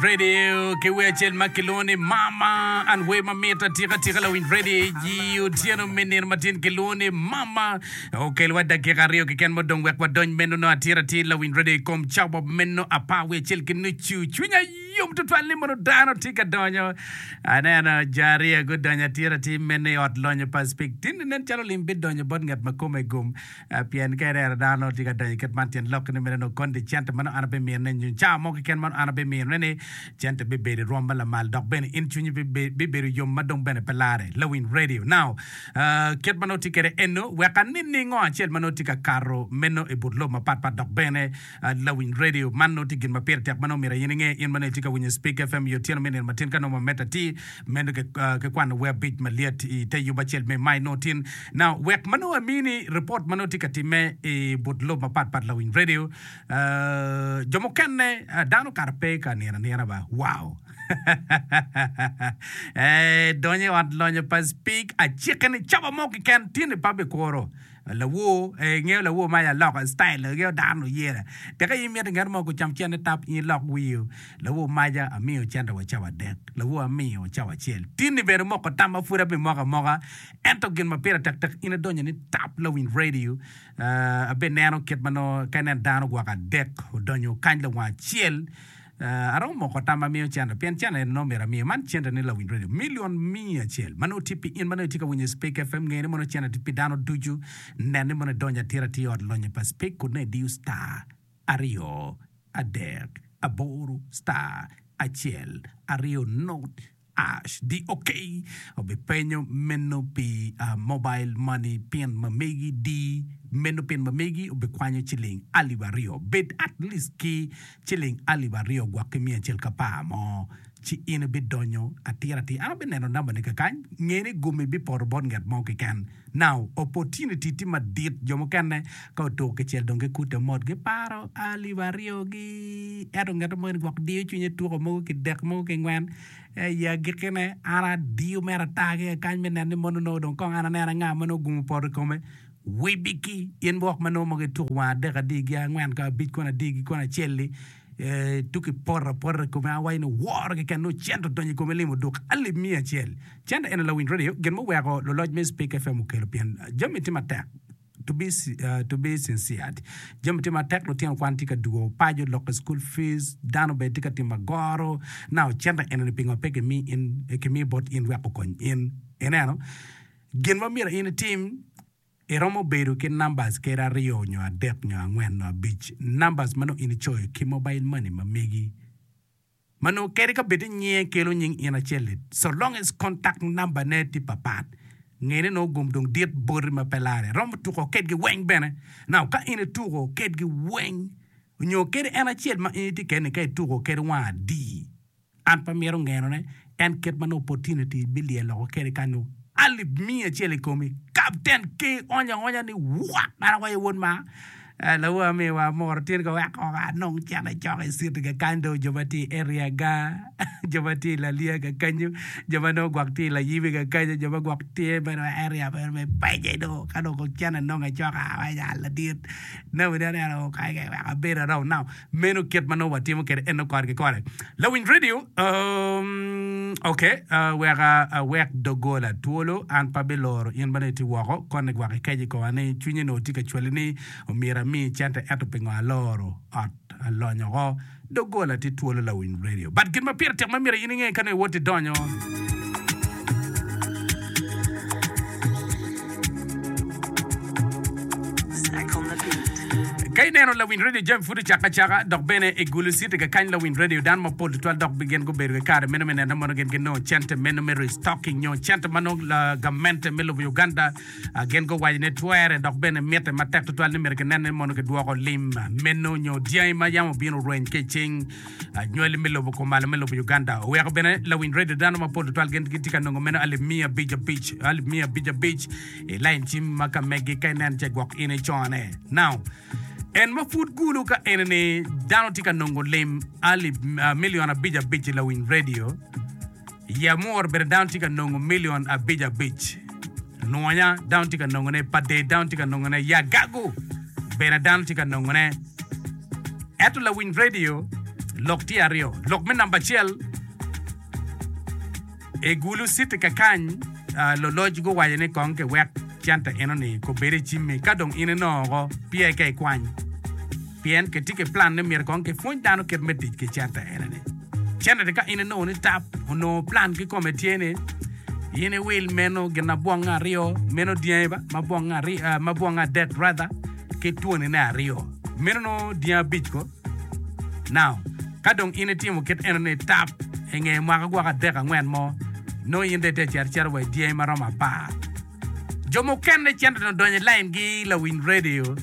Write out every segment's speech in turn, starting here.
Radio ki wer acel ma kilwongo ni Mama and Wer ma mit atika tika lawiny radio i otyeno me nino matin kilwongo ni Mama okelwa dakika aryo keken ma odong wek wadony meno no atir atir lawiny radio i kom cawa meno apar wiye acel ki nucu cwinya yom tutwal ni mono dano tye ka donyo aneno jo aryo gudonyo atir atir meno i ot lonyo pa spik tinni nen calo lim bidonyo bot ngat ma kome gum Pien ka irero dano nongo tye ka donyo i kit man, tyen lokke ni mene nongo koni ni cente meno an abiminone nyo cawa mo keken meno an abiminone ni cente bibedo i rwom ma lamal dok bene in cwinyi bibedo yom ma dong bene pe larre. Lawiny Radio. Now, kit ma nongo tye kwede eno, wek aniningo acel ma nongo tye ka kato meno i but lobo mapatpat dok bene Lawiny redio, Man nongo tye gin ma pire tek ma nongo myero aye ninge. In ma nongo itye ka winyo Spik FM i otyeno me nino matin ka nongo mamette atir, meno ki kwano wer abic malyet i te yub acel me Mai nongo tin na wek ma nongo amini ripot ma nongo tye ka timme i but lobo mapat pat. Lawiny redio, Jo mukene, dano kara pe ka nino anina ba. Wow! Ee, donyo i ot lonyo pa Spik, acike ni caba mo keken tye ni pa bikuro. Lawor, ee, ingeyo lawor ma aye aloka, style na ingeyo dano oyera. Tek aye imito ngat mo gucam cente tap in ilok wir. Lawor maja, amiyo cente wa cawa adek. Lawor amiyo cawa acel. Tin-ni bene omoko tam ma pud abimoko amoka. Ento gin ma pire tek tek in idonyo ni tap lawiny radio. Abineno kit ma nongo ka inen dano gwoko adek odonyo kany lawang acel. Aromo moko tam ma miyo Chandler pien Chandler en nongo myero amiye. Man Chandler ni lawiny radio milion miya acel ma nongo tye pi in ma nongo itye ka winyo Speke FM. Nge ni mono Chandler tye pi dano ducu. Nen ni mono idonyo atira atir i ot lonyo pa Speke kut nongo idiyo star aryo adek aboro star acel aryo nod. HDOK obipenyo meno pi mobile money pin ma megi di meno pin ma megi obikwanyo ciling alip aryo bed at least ki ciling alip aryo gwok ki miya acel kapar mo ci in ibidonyo atira atir an abineno number ne kakany ngeni gumi bipoto bot nget mo keken. Now, opportunity tye madit, jo mukene ka otuko kicel dong gikute mot, giparo alip aryo gi, ento ngete moni gwok diyo cwinye tuko mogo kidek, mogo kingwen, ei agikki ne an adiyo mere ata ki aye kany me neno ni mono nongo dong kong an aneno anga ma nongo ogumo poto i kome, wibiki, in wok ma nongo mogo ituko wang adek adiyi gi angwen ka abic koni adiyi gi koni acel-li, Tuk i poto apota kome a awaco ni woro keken nongo cente odonyo i kome limo duk alip miya acel. Cente eno lawiny radio, gin muweko luloc me Speke FM okelo pien jami tye matek to be to be sincered jami tye matek lutino kwan tye ka dugo paco loko school fees dano bene tye ka timo agoro now cente eno ni pingo pe kimi in kimi bot in wek okony in ineno gin ma myero in itim Iromo bedo ki numbers kede aryo nyo adek nyo angwen nyo abic numbers ma nongo in icoyo ki mobile money ma megi ma nongo kede ka bed ni nyinge kelo nying in acel it so long as contact number ne tye papat ngene nongo gum dong dit boti ma pe lare iromo tuko kedgi weng bene now ka in ituko kedgi weng nyo kede en acel ma in itye kede ni ka ituko kede wang adi An pe amito ngenone, en kit ma nongo opportunity bilyel loko kede ka nongo alip miya acel i komi. Captain Key onyo aonya ni, What! An awaco, Wod ma, lawa amiwa amoro tyen ka weko ka anong cen acok i city ga kany dong jo ma tye i area ga, jo ma tye i Lalia ga kenyu, jo ma nongo gwok tye i Layibi ga kenyu, jo ma gwok tye bene i area meno me Pece do, ka dong kong cen anong acok-ka? Awaco, Aa ladit, nawani aneno kong kany ka iweko abedo aromo nao. Meno kit ma nongo watimo kwede eno kore ki kore. Lawiny redio, Oomm, ok, weka awek doggola twolo, an pe abiloro in ma nongo itye woko. Konne gwok i keje koma ni cwinye nongo tye ka cwali ni omyero ami cente ento pingo aloro ot alonyo oko? Doggola tye twolo lawiny redio, but gin ma pire tek ma myero in inge ka nongo iwoti donyo. Ka ineno lawiny redio jami pud ocakke acaka dok bene igulo citi kakany lawiny redio, dano mapol tutwal dok gin gubedo ki kare meno me nene mono gin ginongo cente meno me restocking nyo cente ma nongo gamente me lobo Uganda gin guwaco ni twere dok bene mitte matek tutwal ni myero kinene mono kidwoko lim meno nyo dyangi ma yam obino orweny ki i cing Anywali me lobo kumalo me lobo Uganda oweko bene lawiny redio dano mapol tutwal gin gitye ka nongo meno alip miya abic abic alip miya abic abic i lain cim ma ka megi ka inen ce gwok in icone. Now, en ma pud gulu ka enini dano tye ka nongo lim alip ah, milion abic abic i lawiny redio I Amor bene dano tye ka nongo milion abic abic. Nwonya dano tye ka nongone, Paded dano tye ka nongone, Yagagu bene dano tye ka nongone. Ento lawiny redio lok tye aryo. Lok me namba acel, i Gulu City kakany, luloc guwaco ni kong kiwek centa enoni obed i cimmi ka dong in inongo oko, pye ka ikwany. Pien kitye ki plan ni myero kong kipwony dano kit me tic ki cente eneni. Cente-ni ka in inongo ni tap, onongo plan kikome tye ni in iwil meno gin abwonge aryo, meno dyangi ba, ma bwonge aryo, ah, ma bwonge adek rather, ki twonine aryo. Meno nongo dyangi abic ko. Now, ka dong in itimo kit enoni, tap, inge mwaka gwoko adek angwen mo, nongo in dong itye ka cito icito wa idyangi ma romo apar. Jo mukene cito dong odonyo i laingi lawiny redio.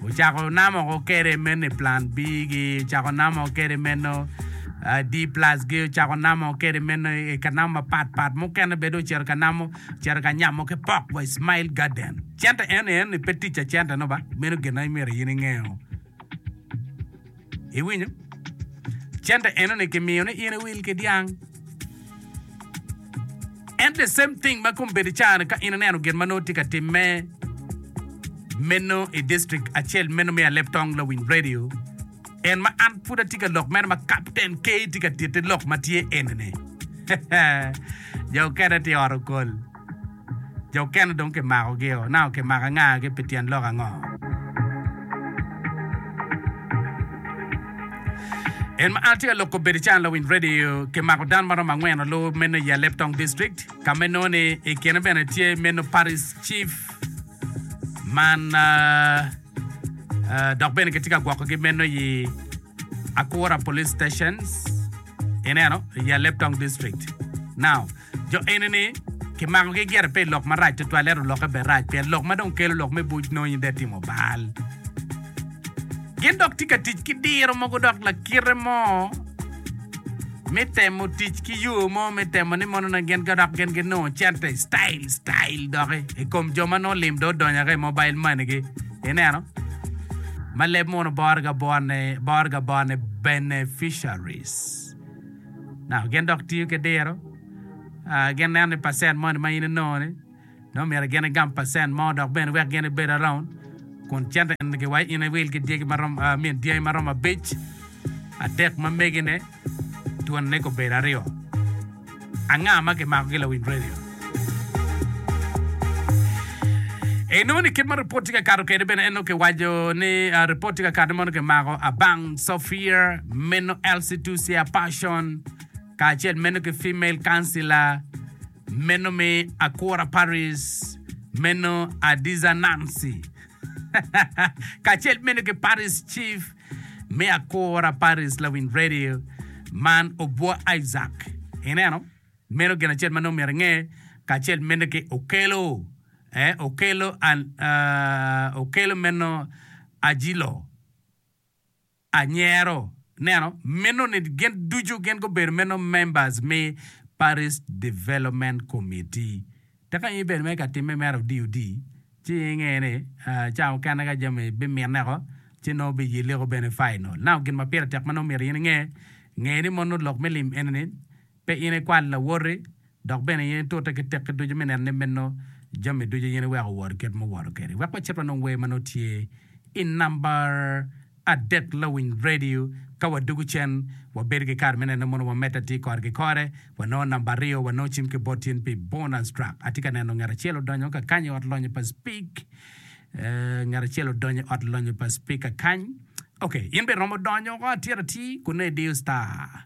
Ocako namoko kede mene Plan B gi, ocako namoko kede meno D plus gi, ocako namoko kede meno i ka namo mapat pat. Mukene bene dong ocito ka namo, ocito ka nyamo ki pok wa i Smile Garden. Cente eno eno ni pe ticca cente no ba? Meno gin ma imyero in ingeo. Iwinyo? Cente enoni kimiyo ni in iwil ki dyang. And the same thing ma kom bedi cani ka in ineno gin ma nongo tye ka timme meno i district acel meno me Alep Tong Lawiny Radio. En ma an pud atye ka lok meno ma Captain K tye ka titi lok ma tye enini. Jo okene tye ot okol. Jo okene dong kimakogi-o, naka okimako angagi pi tyen lok ango? In ma atye ka loko bedo can lawiny radio, kimako dano maromo angwen alu meno i Aleptong District, ka ma inongo ni i kine bene tye meno Parish Chief man dok bene kitye ka gwokogi meno i Akura Police Stations ineno i Aleptong District. Now, Jo eni-ni kimakogi gire pi lok marac tutwal, ento lokke bene rac pien lok ma dong kelo lok me buc nongo in dong itimo bal. Gin dok tye ka tic ki diro mogo dok lakite mo me temo tic ki yo mo me temo ni mono nongo gin dok gin ginongo cente style style doki i kom jo ma nongo lim dong odonyo ki i mobile money-gi. Ineno? Ma leb mono bore ga bone, bore ga bone beneficiaries. nako gin dok tiyo ki diro. Gin neno ni pacent moni ma in inongo-ni, nongo myero gin igam pacent mo dok bene wek gin ibed around kun cente enigi wa in iwil ki dyegi ma romo, I mean, dyangi ma romo abic, adek ma megine, twonine kobedo aryo. Anga ma kimakogi lawiny redio? Inongo ni kit ma ripot tye ka kato kwede bene en nongo kiwaco ni ripot tye ka kato mono kimako abang Sophia, meno Elsie Tusia Passion kacel meno ki Female Councilor meno mi Akura Paris meno Adiza Nancy kacel meno ki Paris Chief mi Akura Paris Lawiny Radio man Obwo Isaac ineno Meno gin acel ma nongo myero inge kacel mene ki Okello, eh, Okello and, uh, Okello meno Ajilo, anyero neno meno ni gin ducu gin gubedo meno members me Parish Development Committee. Tek nongo in ibedo mere ka timme mere odi odi, ci inge ni, uh, ca mukene ka jami bimineko, ci nongo biyeleko bene final. Now gin ma pire tek ma nongo myero in inge, nge ni mono lok me lim ene ni, Pe in ikwal lawoti, dok bene in itute ki tekki ducu me neno ni meno jami ducu in iweko owor kit ma owoto kedi. Wek wacit wanong wer ma nongo tye i namba adek lawiny radio. Ka wadugu cen, wabedo ki kare me neno mono wamedde atir kore ki kore. Wanongo namba aryo, wanongo cim ki bot in pi bonus track. Atye ka neno ngat acel odonyo ka kany i ot lonyo pa Spik. Ngat acel odonyo i ot lonyo pa Spika kany. Ok, in bene iromo donyo woko atir atir kunnu idiyo star.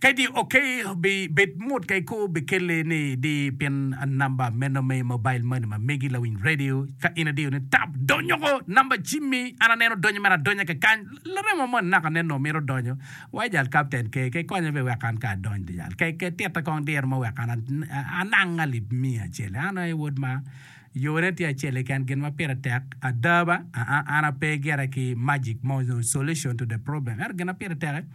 Kadi ok bi bed mot ka iko bi kelle ni di pin namba meno me mobile money ma megi lawiny radio ka in adiyo ni tap donyoko namba cimmi an aneno donyo mere adonya kakany laremo moni naka neno mito donyo wa ijal captain ke ke konya be wek an ka adony di jal ke ke tita kong diro mo wek an anang alip miya acel an aye wod ma yone tye acel keken gin ma pire tek ada ba aa an ape gire ki magic mo solution to the problem ento gin ma pire teke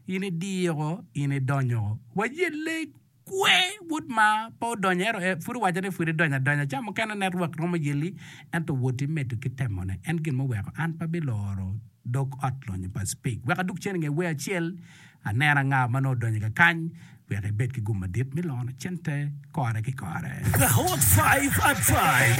In idiko, in idonyo. Waye lec kwe wod ma pe odonyo ento en pud owaco ni pud idonyo adonya ca mukene net rwak romo yeli ento woti medo ki temone en gin muweko an pe biloro dog ot lonyo pa speak wek adug cen inge wer acel aneno anga ma nongo odonyo kakany wek ibed ki gum madit me loyo cente kore ki kore. The Hot Five at Five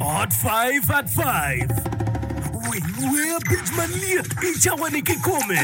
Hot Five at Five Winy wer abic malyet i cawani kikome.